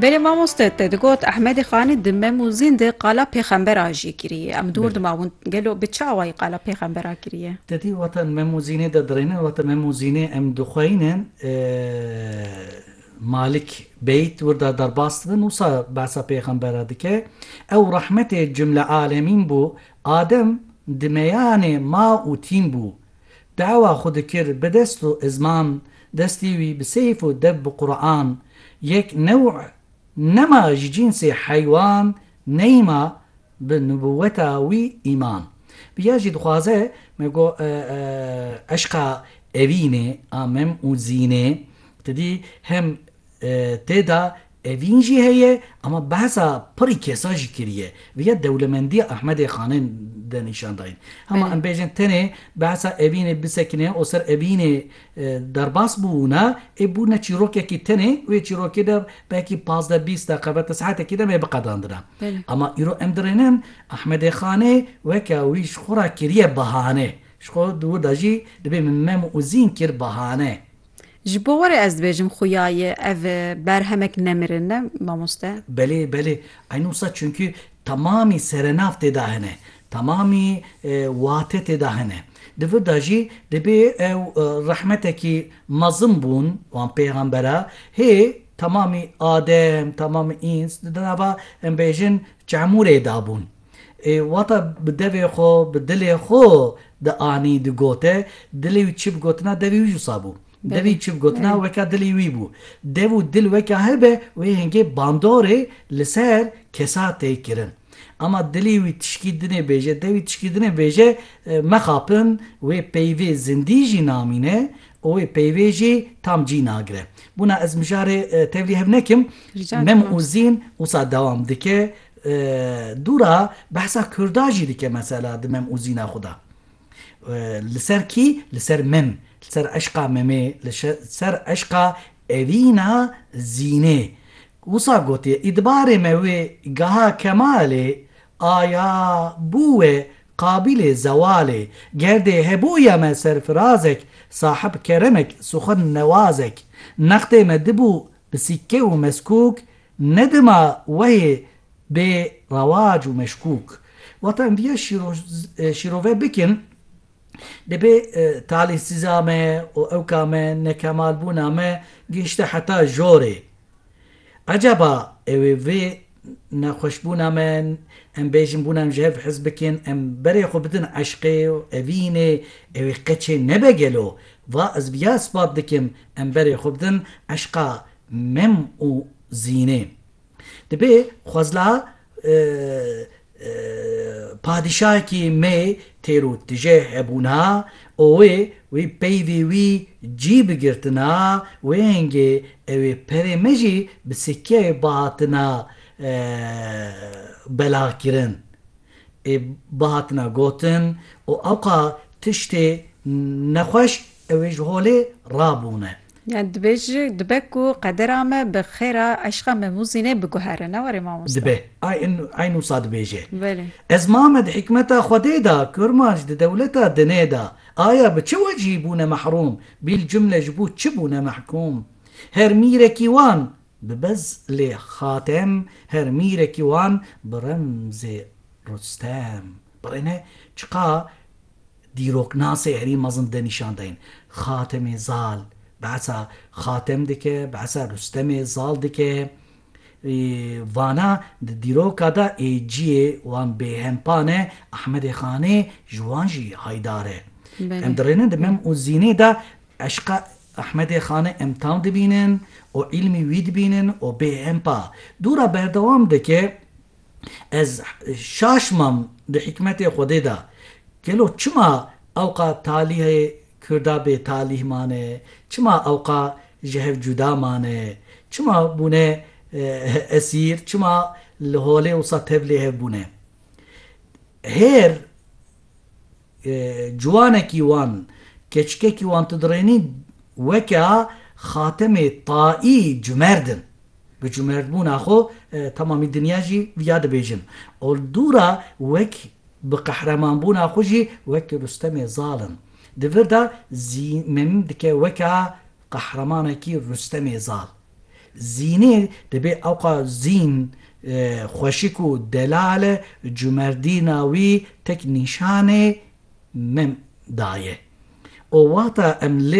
Belê mamoste te digot Ehmedê Xanî di mem û zîn de qala pêxember a jî kiriye. Em dûr Belê. dimawin. Gelo bi çi awayî qala pêxember a kiriye? Te dî wata mem û zînê de dirêne, wata mem û zînê em dixweyînin Malik Beyt wirda derbas dibin wisa behsa pêxember a dike. Ew rehmetê cumle alemîn bû, Adem di meyanê ma û tîn bû. Dawa xwe dikir bi dest û izman, destê wî bi seyf û dev bi Quran, yek new nema ji cînsê heywan neyma bi nubûweta wî îman. Viya jî dixwaze me go eşqa evînê a mem û zînê, ti dî hem tê da Evîn jî heye ama behsa pirî kesa jî kiriye. Viya dewlemendiya Ahmedê Xanên de nîşan dayîn. Hema em bêjin tenê behsa evînê bisekine û ser evînê derbas bûna ê bûna çîrokekî tenê û ê çîrokê de belkî pazdeh bîst deqebe ti saetekî de me biqedandina. Ama îro em dirênin Ahmedê Xanê weke wî ji xwe ra kiriye bahane. Ji xwe di wir de jî dibê min mem û zîn kir bahane. Ji bo warê ez dibêjim xuya ye ev berhemek nemirin ne mamoste? Belê belê eyn wisa çunki temamî serenav tê de hene, temamî wate tê de hene. Di vir de jî dibê ew rehmetekî mezin bûn wan pêxembera hê temamî adem temamî îns di nava em bêjin çemûrê de bûn. Ê wata bi devê xwe, bi dilê xwe dianî, digote. Dilê wî çi bi gotina devî wî jûsa bû. Devî çi bi gotina weka dilê wî bû. Dev û dil weka hev be wê hingê bandorê li ser kesa tê kirin. Ama dilê wî tişkî dinê bêje, devî tişkî dinê bêje mexapin wê peyvê zindî jî namîne û wê peyvê jî tam cî nagire. Bûna ez mijarê tevlî hev nekim. Mem û Zîn wisa dewam dike. Dûra behsa kurda jî dike mesela di mem û zîna xwe de. Li ser kî? Li ser mem, li ser eşqa memê, li ser eşqa evîna zînê. Wisa gotiye îdbarê me wê geha kemalê aya bû we qabîlê zewalê. Gerdê hebûya me serfirazek, sahib keremek, suxin newazek. Nextê me dibû Bi sîkke û meskûk ne dima wehê bê rewac û meşkûk. Wata em viya şîrove bikin dibê talîhsîza me û ewka me, nekemalbûna me gihişte heta jorê. Ecaba ew ê vê nexweşbûna me em bêjin bûna em ji hev hez bikin, em berê xwe bidin eşqê û evînê, ew ê qe çê nebe gelo? Va ez viya ispat dikim. Em berê xwe bidin eşqa mem û zînê. Dibê xwezla padîşahekî me têr û tije hebûna û wê wî peyvê wî cî bigirtina wêngê ew ê perê me jî bi sikkeyê bihatina belahkirin ê bihatina gotin û ewqa tiştê nexweş Ew ê ji holê rabûne. Yani dibêj dibe ku qedera me bi xêra eşqa me Mûzînê biguhere ne warê mamosta? Dibe. Eyn wisa dibêje. Belê. Ez mame di hikmeta Xwedê de, Kurmanc di dewleta dinê de. Aya bi çi wecihî bûne mehrûm? Bil cumle ji bo çi bûne mehkûm? Her mîrekî wan bi bez lê Xatem, her mîrekî wan bi remzê Rustem. Birêne çiqa dîroknasê herî mezin de nîşan dayîn. Xatemê Zal behsa Xatem dike, behsa Rustemê Zal dike. Vana di dîroka de ê ciyê wan bêhempa ne Ehmedê Xanê ji wan jî haydar e. Em dirêne di Mem û Zînê de eşqa Ehmedê Xanê em tam dibînin û îlmî wî dibînin û bêhempa. Dûra berdewam dike Ez şaş mam di hîkmetê Xwedê de. Gelo çima ewqa talîhê Kurda bê talîh mane, çima ewqa ji hev cuda mane, çima bûne esîr, çima li holê wisa tev lê hev bûne. Hêr. Ciwanekî wan, keçikekî wan tu dirênî weke Xatemê Taî cumerd in. Bi cumerdbûna xwe temamî dinya jî viya dibêjin. Oldûra wek bi qehremanbûna xwe jî wek Rustemê Zal in. Di vir de zî min dike weke qehremanekî Rustemê Zal. Zînê dibê ewqa zîn, xweşik û delal e, cumerdîna wî tek nîşanê min daye. O wexta em li